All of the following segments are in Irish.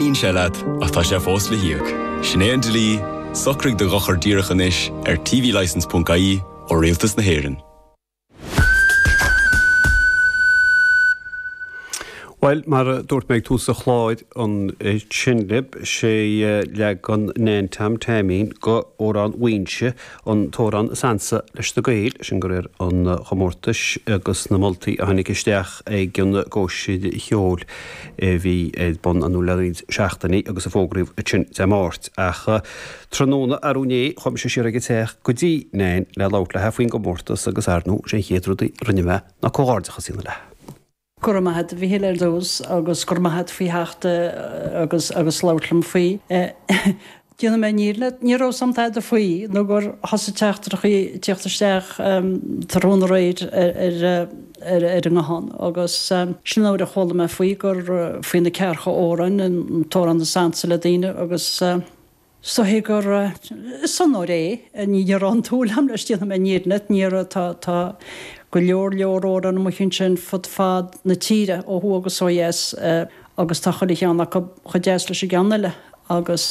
In éad leat, ach tá sé fós le híoc. Sin é an dlí, socraigh do dhochar díreach anois ar tvlicense.ie ó Rialtas na hÉireann. Bhuel, mar a dúirt mé ag tús an chláir, an tseanlib, sé leagan Nan Tom Taimín go Amhrán Mhuighinse, An t-amhrán is ansa leis na Gaeil, sin go réir an chomórtais agus na moltaí a tháinig isteach ag an gcóisir cheoil a bhí ar bun anuraidh le roinnt seachtainí agus a fógraíodh ansin Dé Máirt. Ach tráthnóna arú inné, chuaigh mise siar ag an teach go dtí Nan le labhairt léithi faoin gcomórtas agus, ar ndóigh, is é an chéad rud a rinne mé ná comhghairdeachas a dhéanamh léithi. Go raibh maith a't, Mhichíl, ar dtús, agus go raibh maith a't faoi theacht agus agus labhairt liom faoi. Déanta na fírinne, ní raibh a fhios a'm tada faoi nó gur thosaigh teachtaireachaí ag tíocht isteach tráthnóna aréir ar ar an nguthán agus sin nuair a chuala mé faoi gur faoi na ceathracha amhrán, an t-amhrán is ansa le daoine agus. So, tuigim gur, is onóir é, ní raibh aon tsúil a'm leis, déanta na fírinne leat, mar tá, tá go leor, leor amhráin amuigh ansin fud fad na tíre, ó thuaidh agus ó dheas, agus tá chuile cheann acu chomh deas leis an gceann eile agus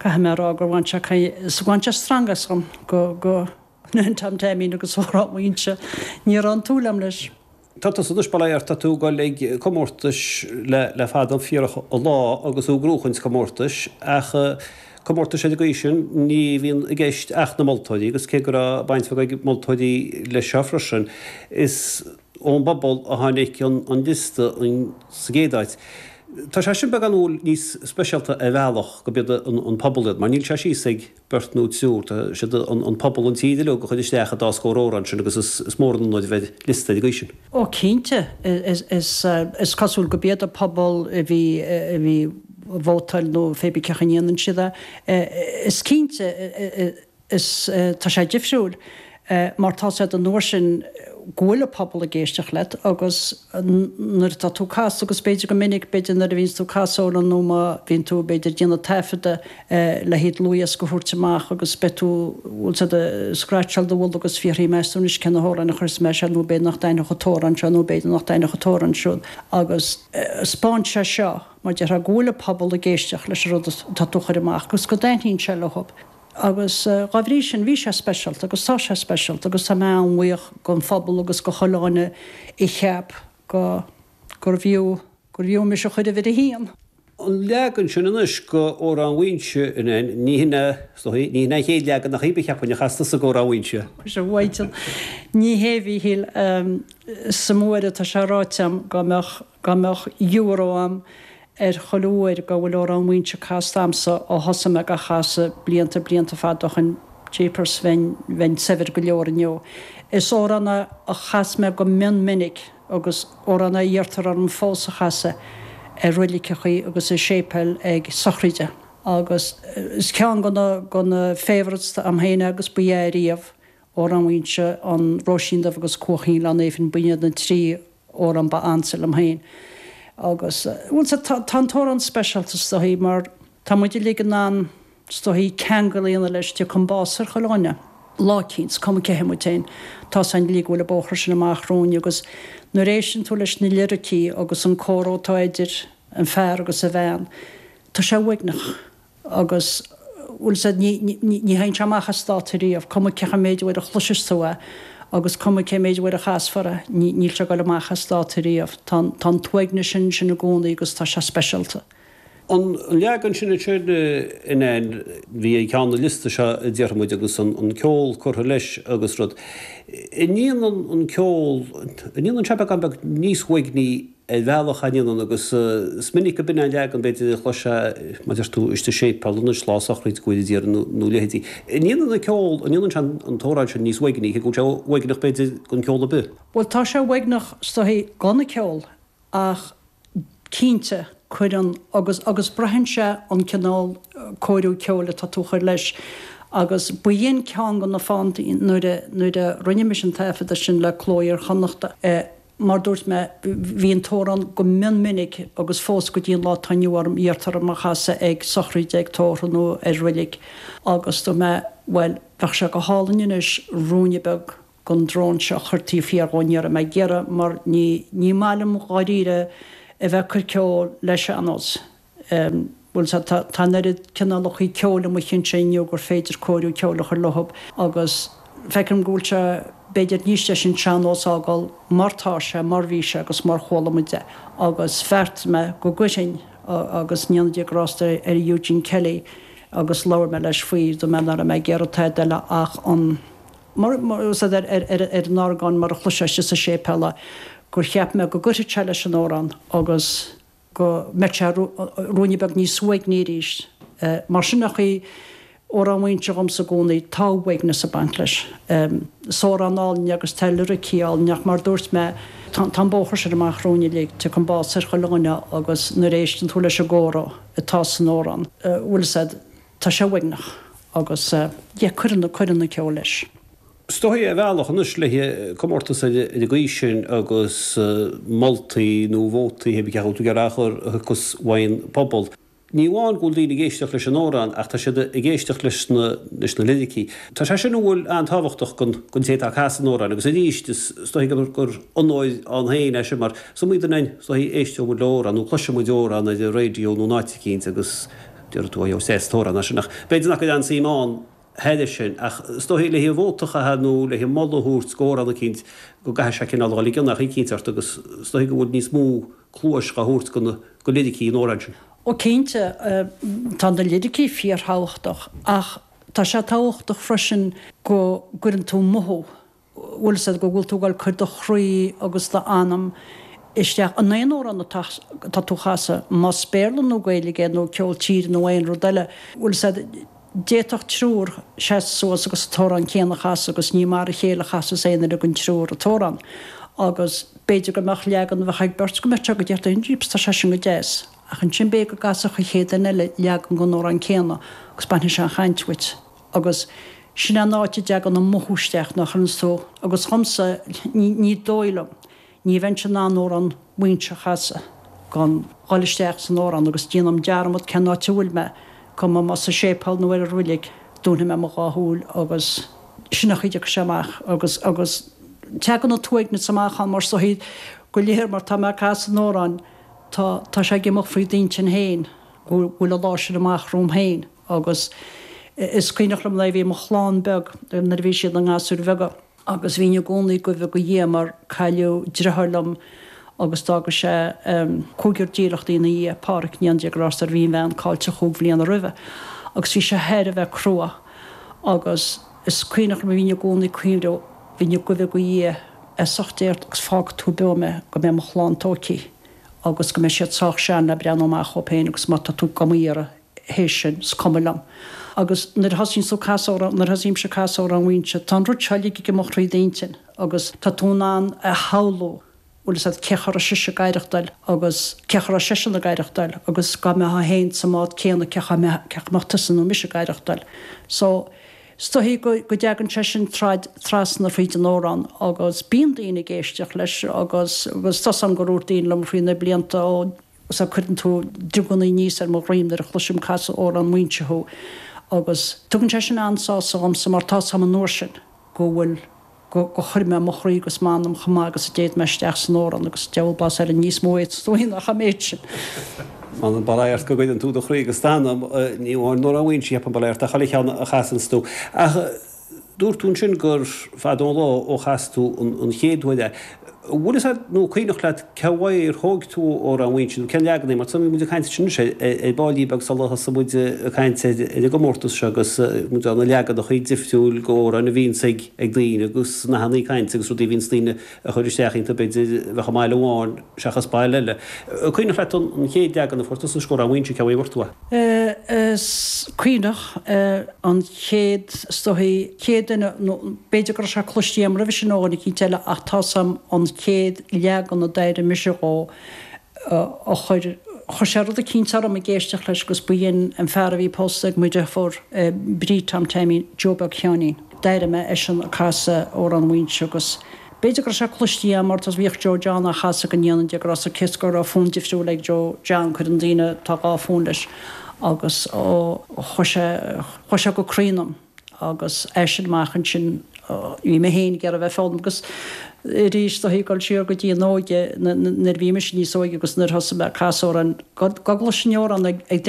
caithfidh mé a rá gur bhain sé caoi, bhain sé stangadh asam go, go Nan Tom Taimín agus Amhrán Mhuighinse, ní raibh aon tsúil a'm leis. Tá tusa anois, bhuel, ar, tá tú dul ag comórtais le fada fíorach an lá agus thú ag gnóthachtáil sa gcomórtais, ach comórtais ar an gcaoi sin ní bhíonn i gceist ach na moltóirí, agus cé go raibh baint bheag ag moltóirí leis seo freisin, is ón bpobal a tháinig an liosta sa gcéad áit. Tá sé sin beagán, bhuel, níos speisialta ar bhealach go b'iad an pobal é, mar níl sé síos ag. beirt nó triúr, tá sé ag an bpobal, an tír uilig a chuir isteach an dá scór amhrán sin agus is mór an rud a bheith ar liosta an gcaoi sin. Ó cinnte, is cosúil go b'iad an pobal a bhí ag vótáil nó pé ar bith céard a ndéanann siad, is cinnte, is tá sé difriúil. é, mar tá a fhios a'd an uair sin go bhfuil an pobal ag éisteacht leat agus nuair atá tú ag casadh, agus b'fhéidir go minic, b'fhéidir nuair a bhíonns tú ag casadh ceoil nó má bhíonn tú, b'fhéidir, ag déanamh taifeadadh le haghaidh dlúthdhiosca a thabhairt amach agus beidh tú, bhfuil a fhios a'd, ag scraitseáil do mhullach agus ag fiafraí, meas tú anois cé na hamhráin a chuirfeas mé air seo nó b'fhéidir nach dtaitneodh an t-amhrán seo nó b'fhéidir nach dtaitneodh an t-amhrán siúd agus. spáin sé seo, mar déarfá, go bhfuil an pobal ag éisteacht leis an rud atá tú a chur amach agus go dtaitníonn sé leo. agus dá bhrí sin bhí sé speisialta agus tá sé speisialta agus tá mé an-bhuíoch den phobal agus do chuile dhuine a cheap gurbh fhiú gurbh fhiú mise a chur uimhir a haon. an leagan sin anois go Amhrán Mhuighinse, a Nan. Ní hin a, is dóigh, ní hin an chéad leagan nach ea, cheapfainn a chas tusa go Amhrán Mhuighinse. Is é Mhaidhc Ní Shéimhíthíl is sa Mhuaidh atá sé ráite agam go mbeadh. dhá mbeadh euro a'm ar chuile uair go bhfuil Amhrán Mhuínse casta agamsa ó thosaigh mé dhá chasadh, blianta blianta fada ó shin jeepers bheinn bheinn saibhir go leor inniu. Is amhrán a chas mé go mion minic agus amhrán a iarrtar orm fós a chasadh ar reiligeachaí agus i séipéil ag sochraide. Agus is ceann de na de na favourites a'm féin agus ba ea ariamh Amhrán Mhuínse an Róisín Dubh agus Cuaichín Ghleann Néifinn b'in iad na trí amhrán ab ansa liom féin agus bhuel sea, tá an t-amhrán speisialta is dóichí mar tá muid uilig in ann is dóichí ceangal a dhéanamh leis, tiocfaidh an bás ar chuile dhuine lá eicínt, is cuma cé hé muid féin, tá's againn uilig go bhfuil an bóthar sin amach romhainn agus nuair a éisteann tú leis na liricí agus an comhrá atá idir an fear agus a bhean, tá sé uaigneach Agus bhuel, sea, ní théann sé amach as dáta riamh, cuma cé chomh méid uair a chloiseas tú é agus cuma cé mhéad uair a chasfar é, níl sé ag goil amach as dáta riamh. Tá an t-uaigneas sin ansin i gcónaí agus tá sé speisialta. An leagan sin ansin a Nan a bhí ag ceann an liosta seo a déarfaidh muid agus an ceol curtha leis agus rud. An ndéanann an ceol, an ndéanann sé beagán beag níos uaigní ar bhealach an ndéanann, agus is minic gurb in é an leagan, b'fhéidir, a chloisfeá mar a deir tú istigh i séipéal anois lá sochraide go bhfuil a d'iarraidh, nó a leithéide. An ndéanann an ceol, an ndéanann sé an t-amhrán sin níos uaigní, cé go bhfuil sé uaigneach, b'fhéidir, gan ceol ar bith? Bhuel, tá sé uaigneach is dóichí gan ceol, ach cinnte, cuireann, agus, agus braitheann sé an cineál cóiriú ceoil atá tú a chur leis, agus b'in é ceann de na fáthanna, nuair a, nuair a rinne mise an taifeadadh sin le Cló Iar-Chonnachta, mar dúirt mé, bhí an t-amhrán go mion minic agus fós go dtí an lá atá inniu ann iarrtar orm é a chasadh ag sochraide, ag tórramh nó ar reilig agus dúirt mé, bhuel, bheadh sé go hálainn anois ruainne beag den drón seo a chur taobh thiar dhó, ní raibh mé ag iarraidh mar ní maith liom dháiríre a bheith ag cur ceol le sean-nós. Bhuel, tá an oiread cineálacha ceoil amuigh ansin inniu gur féidir cóiriú ceoil a chur leo agus feicim go bhfuil sé, b'fhéidir, níos deise an sean-nós a fhágáil mar tá sé, mar bhí sé agus mar chuala muid é. Agus bheartaigh mé go gcuirfinn agus ndéana Dia grásta ar Eugene Kelly agus labhair mé leis faoi, dúirt mé nach raibh mé ag iarraidh tada eile ach an, ar an orgán mar a chloisfeá sa séipéal, gur cheap mé go gcuirfeadh sé leis an amhrán agus, go mbeadh sé ruainne beag níos uaigní arís. Mar sin an chaoi, Amhrán Mhuínse dhomsa i gcónaí, tá uaigneas ag baint leis. Is amhrán álainn é agus tá liricí áille ann ach mar dúirt mé, tá an bóthar sin amach romhainn uilig, tiocfaidh an bás ar chuile dhuine agus nuair a éisteann tú leis an gcomhrá atá san amhrán, bhuel, is ea, tá sé uaigneach agus, yeah, cuireann an ceol leis. Is dóichí ar bhealach anois le comórtas ar an gcaoi sin agus moltaí nó vótaí, hé bí cén chaoi a bhfuil tú ag iarraidh a chur, a thiocfas ón bpobal. Ní amháin go bhfuil daoine ag éisteacht leis an amhrán ach tá siad ag éisteacht leis na liricí. Tá sé sin bhuel an-tábhachtach don té atá ag casadh an amhráin agus arís, is dóichí gur onóir ann féin é sin mar is iomaí duine is dóichí éisteoidh muid le amhrán nó cloisfidh muid amhrán ar an raidió nó in áit eicínt agus déarfaidh tú 'Ó, is deas an t-amhrán é sin' ach b'fhéidir nach gcuireann aon suim ann thairis sin, ach is dóichí le haghaidh vóta a chaitheamh nó le haghaidh moladh a thabhairt do amhrán eicínt go gcaithfidh sé cineál a dhul i gcion ar chaoi eicínt ort agus is dóichí go bhfuil níos mó cluais dhá thabhairt do liricí an amhráin sin. Ó cinnte, tá na liricí fíorthábhachtach ach tá sé tábhachtach freisin go gcuireann tú mothú bhfuil a fhios agat go bhfuil tú ag cur do chroí agus do anam isteach in aon amhrán atá atá tú a chasadh más béarla nó gaeilge é nó ceol tíre nó aon rud eile bhfuil a fhios agat d'fhéadfadh triúr seasadh suas agus an t-amhrán céanna a chasadh agus ní mar a chéile a chasas aon duine den triúr an t-amhrán agus b'fhéidir go mbeadh leagan a bheadh ag beirt go mbeadh sé go deas ó jeez tá sé sin go deas ach ansin b'fhéidir go gcasfadh an chéad duine eile leagan den amhrán céanna agus bainfidh sé an chaint dhíot. Agus sin é an áit a dtagann an mothú isteach, nach fhanann tú, agus dhomsa, ní dóigh liom, ní bheinnse in ann Amhrán Mhaínse a chasadh gan dhul isteach san amhrán agus déanaim dearmad cén áit a bhfuil mé, cuma más sa séipéal nó ar an reilig, dúnfaidh mé mo dhá shúil agus sin é an chaoi a dteagann sé amach agus, agus teagann an t-uaigneas amach ann mar is dóichí go léir mar tá mé ag casadh an amhráin, tá, tá sé ag imeacht thrí d'intinn féin. go bhfuil an lá sin amach romham féin agus is cuimhneach liom nuair a bhí mo chlann beag nuair a bhí siad ina ngasúir bheaga agus bhínn i gcónaí ag guí do Dhia mar cailleadh driotháir liom agus d'fhága sé cúigear dílleachtaí ina dhiaidh, Páraic, go ndéana Dia grásta air, bhí a bhean caillte chúig bhliana roimhe agus bhí sé thair a bheith crua agus is cuimhneach liom a bhínn i gcónaí ag cuimhneamh, bhínn ag guí do Dhia, as ucht Dé ort agus fágfaidh tú beo mé go mbeidh mo chlann tóigthe. agus go mbeidh siad sách sean le breathnú amach dhóibh féin agus má tá tú do m'iarraidh théis sin, is cuma liom. Agus nuair a thosaíonns tú ag casadh amhrán, nuair a thosaímse ag casadh amhrán Mhaínse, tá an rud seo uilig ag imeacht thríd d'intinn agus tá tú in ann a shamhlú, bhfuil a fhios agat, cén chaoi a raibh sise ag aireachtáil agus cén chaoi a raibh seisean ag aireachtáil agus dhá mbeifeá féin sa mbád céanna cén chaoi a mbeadh tusa nó mise ag aireachtáil. So. Is dóichí go dtagann sé sin trasna fríd an amhrán agus bíonn daoine ag éisteacht leis agus tá's a'm gur dhúirt daoine liom thrí na blianta ó sea, cuireann tú drioganna aníos ar mo dhroim nuair a chloisim ag casadh Amhrán Mhaínse thú agus tugann sé sin an-sásamh dhomsa mar tá's a'm an uair sin go bhfuil go chuir mé mo chroí agus m'anam chomh maith agus a d'fhéad mé isteach san amhrán agus diabhal blas ariamh níos mó a fhéadas tú a dhéanamh ach an méid sin. M'anam, bail ó Dhia ort, go gcuireann tú do chroí agus d'anam ní amháin in Amhrán Mhaínse ach, bail ó Dhia ort, i chuile cheann a chasanns tú, ach dúirt tú ansin gur fada an lá ó chas tú an chéad uair é. Bhfuil fhios agat, nó cuimhneach leat, cé uaidh ar thóig tú Amhrán Mhaínse, nó cén leagan é, mar tá muid ag caint ansin anois ar baillín beag sula thosaigh muid ag caint ar an gcomórtas seo agus muid ann, na leaganacha difriúil go amhráin a bhíonns ag daoine agus nathannaí cainte agus rudaí a bhíonns daoine a chuir isteach iontu b'fhéidir a bheadh i mbaile amháin seachas baile eile. Cuimhneach leat an chéad leagan a fuair tusa d'Amhrán Mhaínse, cé uaidh a bhfuair tú é? Is cuimhneach an chéad, is dóichí, an chéad duine, nó b'fhéidir go raibh sé cloiste agam roimhe sin ó dhuine eicínt eile, ach tá a fhios agam an chéad leagan a d'airigh mise dhó a chuir, chuir sé rud eicínt orm ag éisteacht leis agus b'in an fear a bhí pósta ag mo dheirfiúr, Bríd, Tom Taimín, Joe Beag Sheáinín. D'airigh mé eisean ag casadh Amhrán Mhaínse agus B'fhéidir go raibh sé cloiste agam mar bhíodh Joe John á chasadh go ndéana Dia grásta air, cé go raibh fonn difriúil ag Joe John, cuireann daoine tá dhá fonn leis, agus chuaigh sé, chuaigh sé go croí ionam agus as sin amach ansin bhí mé féin ag iarraidh bheith ag foghlaim agus arís is dóichí, ag goil siar go dtí an óige nuair a bhí mise níos óige agus nuair a thosaigh mé ag casadh amhráin go gcloisinn amhrán ag